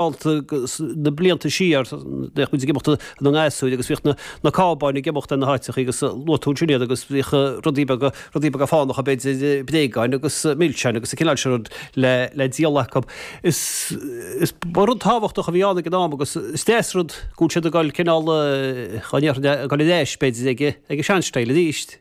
alta na blianta siar, bhíodh muid ag imeacht inár ngasúir agus bhíodh na cábáin ag imeacht ar na háiteachaí agus luaigh tú ansin iad agus bhíodh rudaí beaga, rudaí beaga fánacha b'fhéidir, bréagáin agus milseáin agus an cineál sin rud le, le díol acu. Is, is, ba rud tábhachtach a bhí ann ag an am agus is deas rud go bhfuil siad ag dul cineál, cá ndéarfainn, ag dul ar ais b'fhéidir ag, ag an seanstíl aríst.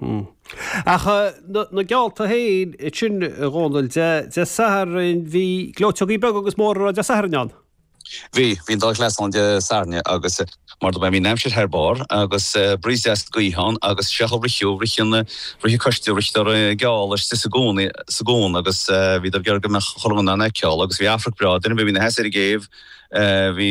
Hm. Ach na geallta féin sin, a Dhónaill, Dé Sathairn bhí gleoiteogaí beaga agus móra ann Dé Sathairn ann? Bhí, bhí an dá chleas ann Dé Sathairn agus mar dúirt mé bhí an aimsir thar barr agus breeze deas gaoithe ann agus seo a ritheadh, rith an, rith an coiste, ritheadar geall istigh sa gcuan, sa gcuan agus bhíodar ag iarraidh go mbeadh an crowd in ann é a fheiceáil agus bhí amharc breá ag daoine a bhí, a bhí ina seasamh ar an gcéibh, bhí,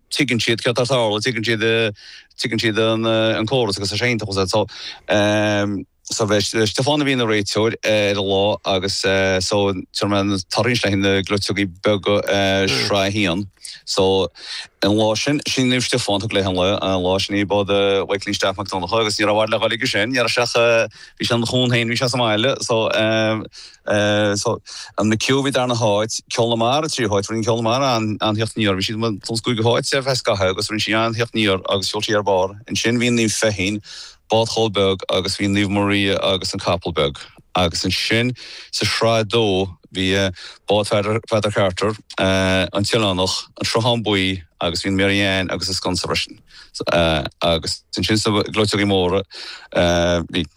Tuigeann siad céard atá ar fáil agus tuigeann siad, tuigeann siad an córas agus tá sé iontach, as so, so b'é Stiofán a bhí ina réiteoir ar an lá agus so tar mar tar éis leis na gleoiteogaí beaga Shraith a hAon so an lá sin, sí an Naomh Stiofán a thug léi an lá, an lá sin í bád Mhaidhcilín Staff Mac Donncha agus ní raibh i bhfad le goil aige sin, ní raibh sé ach, bhí sé ina chuan féin, bhí sé sa mbaile so, An McHugh a bhí darna háit, Ceol na Mara tríú háit. Rinne Ceol na Mara an-tíocht aniar. Bhí sí sa gcúigiú háit ar feadh scathaimh agus rinne sí an-tíocht aniar agus sheol sí thar barr. Ansin bhí an Naomh Feichín, bád Choilm Beag agus bhí an Naomh Maria agus An Capall Beag. Agus ansin sa Sraith 2 bhí Bád Pheadar Carter, An tOileánach, An Sruthán Buí agus bhí an Mary Ann agus An Sconsa freisin. Agus ansin sna gleoiteogaí móra bhí.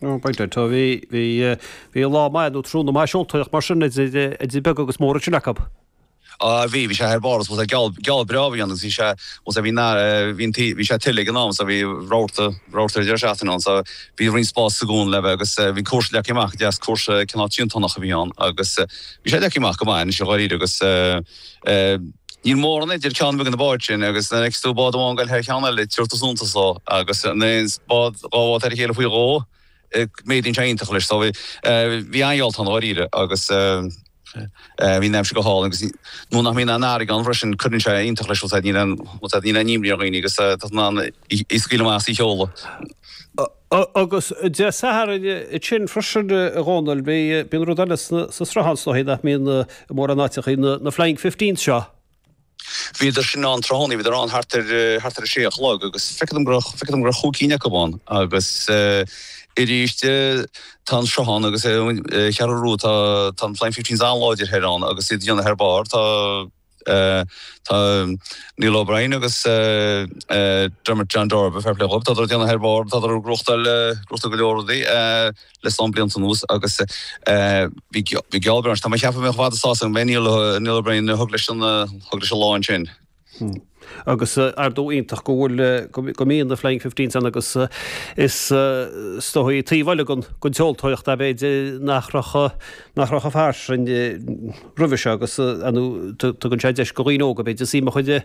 Bhí lá maith nó tráthnóna maith seoltóireacht mar sin idir beag agus mór ansin acu. Á bhí, bhí sé thar barr, bhí geall breá a bhí ann agus bhí sé, bhí sé ag tuile ag an am, bhí rabharta ar an deireadh seachtaine ann, bhí roinnt spás sa gcuan le bheith agus bhí cúrsaí leagtha amach, deas, cúrsa cineál triantánach a bhí ann agus bhí sé leagtha amach go maith anois dháiríre agus. Níl mórán idir ceann ar bith de na báid sin agus nuair a fheiceas tú bád amháin ag goil thar cheann eile, tugtar suntas dó. Agus má théann bád, dhá bhád thar a chéile faoi dhó, méadaíonn sé iontach leis. So bhí an-gheall ann dháiríre agus bhí an aimsir go hálainn agus nuair nach mbíonn an fharraige ann freisin cuireann sé iontach leis, níl aon imní ar dhaoine agus tá tú in ann í a scaoileadh amach agus í a sheoladh. Ó, agus Dé Sathairn, ansin freisin, a Dhónaill, bhí, bíonn rud eile sna, sa Sruthán, is dóichí, nach mbíonn mórán áiteachaí, na, na Flying Fifteens seo. Bhíodar sin ann tráthnóna, bhíodar ann thart ar, thart ar a sé a chlog agus feictear dom go raibh, feictear dom go raibh chúig cinn acu ann agus aríst tá an Sruthán agus an Cheathrú Rua, tá, tá na Flying Fifteens an-láidir thoir ann agus iad ag déanamh thar barr, tá. Tá Neil O'Brien agus Dermot John Darby, fair plé dhóibh, tá siad ag déanamh thar barr, tá siad ag rochtáil rochtáil go leor rudaí le lán blianta anuas agus bhí bhí geallta. Tá mé ag ceapadh go mbeadh siad sásta an mbeidh Neil Neil O'Brien thug leis an thug leis an lá ansin. Agus ardú iontach go bhfuil go mbíonn na Flying Fifteens ann agus is is dóigh taobh eile den tseoltóireacht b'fhéidir nach raibh nach raibh chomh fairsing roimhe seo agus tugann sé deis do dhaoine óga, b'fhéidir, suim a chur inti.